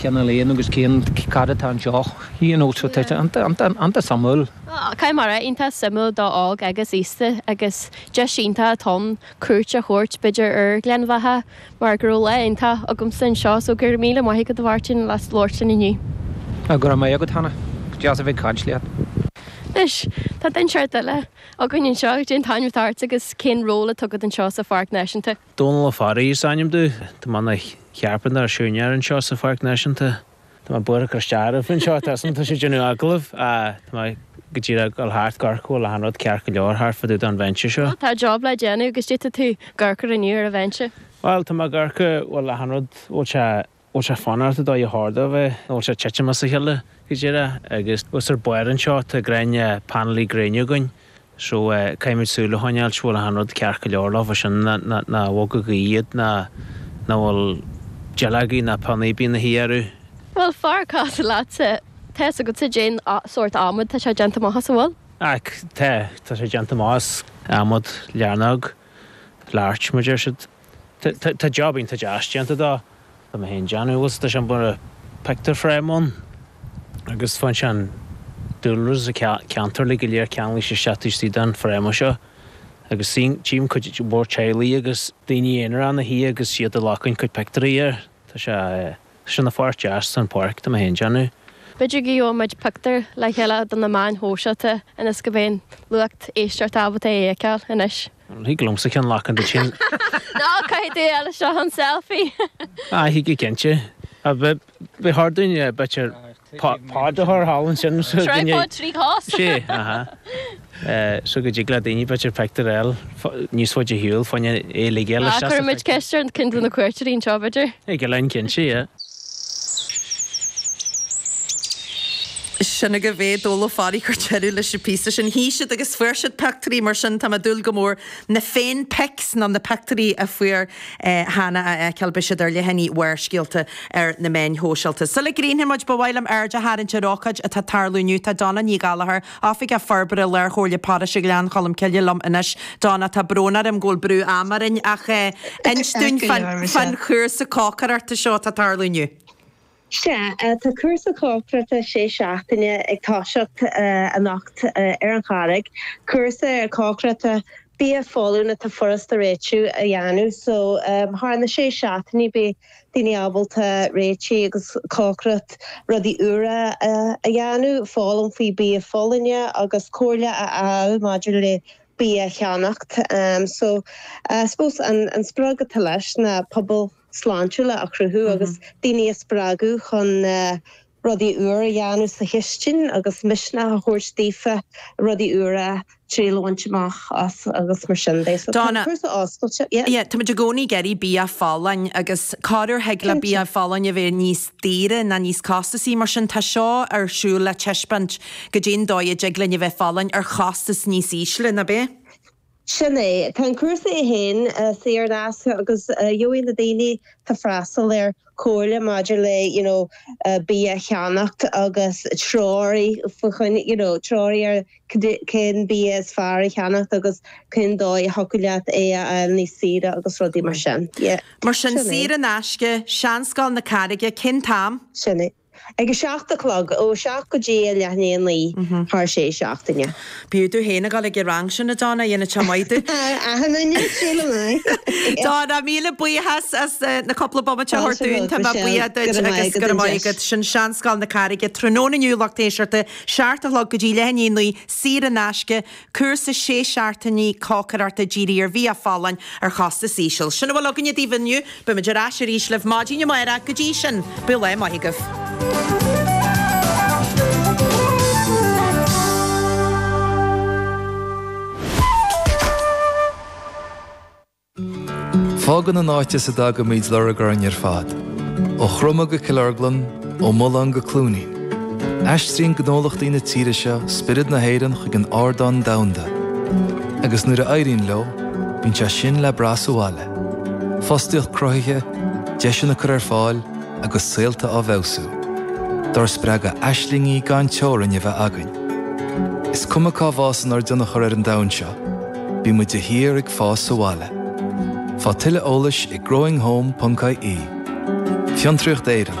Cá bhfuil Ian agus cén cad atá anseo? Ian Ó, tá sé iontach suimiúil. Caithfidh mé a rá, iontach suimiúil do óg agus aosta agus deis iontach ann cuairt a thabhairt b'fhéidir ar Ghleann Bheatha mar go raibh lá iontach agamsa anseo so go raibh míle maith agat a Mháirtín as labhairt linn inniu. Go raibh maith agat Hannah, deas a bheith ag caint leat. Anois, tá duine amháin eile againn anseo, cén t-ainm atá ort agus cén ról atá agat anseo sa Pháirc Náisiúnta? Dónal Ó Fearraigh is ainm domh. Tá mé i mo chearpantóir nó siúinéir anseo sa Pháirc Náisiúnta. Tá mé buartha cur isteach oraibh anseo. Tá sé ag déanamh agallaimh. Tá mé go díreach ag dul thart ag amharc an, bhfuil achan rud ceart go leor thart fá dtaobh den bhinse seo? Má tá job le déanamh agus cad é atá tú ag amharc inniu ar an bhinse? Bhuel, tá mé ag amharc an, bhfuil achan rud, bhfuil sé. bhfuil sé fanacht i dtólamh in ordú nó an bhfuil sé ag titim as a chéile go díreach agus thuas ar bharr anseo tá gréine painéil ghréine againn so caithfimid súil a choinneáil an bhfuil achan rud ceart go leor leofa sin nár bhog aon duine iad nó an bhfuil dúil ag na héanacha a bheith ina suí orthu. Bhuel, fearr casadh leatsa. Tá's agatsa cén sórt adhmaid tá sé déanta amach as, an bhfuil? Och tá, tá sé déanta amach as adhmad learóg, larch mar deir siad. Tá job iontach deas déanta dó. Tá muise féin agus tá sé mar a bheadh pictiúr frame ann agus bíonn an dúlra sa ceantar uilig go léir ceangailte leis isteach taobh istigh den frame seo agus tchím, tchím cuid mhór teaghlaigh agus daoine aonair ina suí agus iad ag glacan cuid pictiúirí air. Tá sé Tá sé na pháirt deas den pháirc. Tá mé féin déanamh. B'fhéidir go bhfaighidh muid pictiúr le chéile do na meáin shóisialta ionas go mbeidh lucht éisteachta ábalta é a fheiceáil anois. Thig liomsa ceann a ghlacan duit sin. Nó caithfidh tú leis seo an selfie. Aye, thig go cinnte. B'fhéidir thig le duine b'fhéidir tripod a chur thall ansin. Tripod trí chos. Sea, aha. So go dtig le daoine b'fhéidir pictiúr a fháil níos faide ar shiúl fána choinne uilig. Cuirfimid ceist ar cionn de na cuairteoirí anseo, b'fhéidir. Thig linn, cinnte, yeah. Sin agaibh é, Dónal Ó Fearraigh ag cur deireadh leis an bpíosa sin. Shuigh siad agus fuair siad pictiúirí, mar sin tá mé ag dúil go mór na féin pics nó na pictiúirí a fuair Hannah a fheiceáil. Beidh siad ar leathanaigh Bharrscéalta ar na meáin shóisialta. Sula gcríochnóidh muid ba mhaith liom aird a tharraingt ar ócáid atá ag tarlú inniu. Tá Donna Ní Ghallchóir, Oifigeach Forbartha Lár Chomhairle Pároiste Ghleann Cholm Cille liom anois. Donna, tá brón orm go bhfuil brú am orainn ach inis dúinn fán chúrsa cócaireachta seo atá ag tarlú inniu. Sea, tá cúrsa cócaireachta sé seachtaine ag toiseacht anocht ar an Charraig. Cúrsa cócaireachta bia folláin atá furast a réitiú a dhéanamh so thar na sé seachtainí beidh daoine ábalta réiteach agus cócaireacht rudaí úra a dhéanamh, foghlaim faoi bia folláin agus comhairle a fháil maidir le bia a cheannacht. So I suppose an sprioc atá leis ná pobail sláintiúla a chruthú agus daoine a spreagadh chun rudaí úra a dhéanamh sa chistin agus misneach a thabhairt daofa rudaí úra triail a bhaint amach agus mar sin de. So tá an Donna, cúrsa oscailte. Yeah? yeah, táimid i gcónaí ag iarraidh bia folláin agus cadé ar thig le bia folláin a bheith níos daoire ná níos costasaí, mar sin tá seo ar siúl le taispeáint caidé an dóigh a dtig linn a bheith folláin ar chostas níos ísle, ná bith? Sin é. Tá an cúrsa é féin saor in aisce agus gheobhaidh na daoine atá freastal air comhairle maidir le you know bia a cheannacht agus treoraí faoi choinne you know treoraí ar cén bia is fearr a cheannacht agus cén dóigh a dtiocfadh leat é a fháil níos saoire agus rudaí mar sin. Yeah. Mar sin, saor in aisce, Seanscoil na Carraige, cén t-am? Sin é. Ag a seacht a chlog, ó a seacht go dtí a leath i ndiaidh a naoi, thar sé seachtaine. B'fhiú duit fhéin a dhul chuig an rang sin a Donna, dhéanfadh sé maith duit. Ahem, an ndéanfadh sé liom é! Donna, míle buíochas as na cúpla bomaite a thabhairt dúinn, tá mé buíoch duit agus go raibh maith agat. Sin Seanscoil na Carraige tráthnóna inniu, lucht éisteachta, seacht a chlog go dtí leath i ndiaidh a naoi, saor in aisce, Cúrsa 6 seachtainí cócaireachta dírithe ar bhia folláin ar chostas íseal. Sin a bhfuil againne daoibh inniu. Beimid ar ais arís libh maidin amárach. Go dtí sin, bíodh lá maith agaibh. Fágann an áit as a dtagaimid lorg orainn ar fad, ó Chroma go Cill Orglan, ó Mhullán go Cluainín, aistríonn gnólachtaí na tíre seo spiorad na hÉireann chuig an ardán domhanda, agus nuair a éiríonn leo, bíonn sé sin le brath sa bhaile, fostaíocht cruthaithe, deiseanna á gcur ar fáil agus saolta á bhfeabhsú. Dár spreagadh aislingí gan teorainn a bheith againn. Is cuma cá bhfásann ár dtionchar ar an domhan seo, Bíonn muid de shíor ag fás sa bhaile. Faigh tuilleadh eolais ag growinghome.ie. Fiontraíocht Éireann.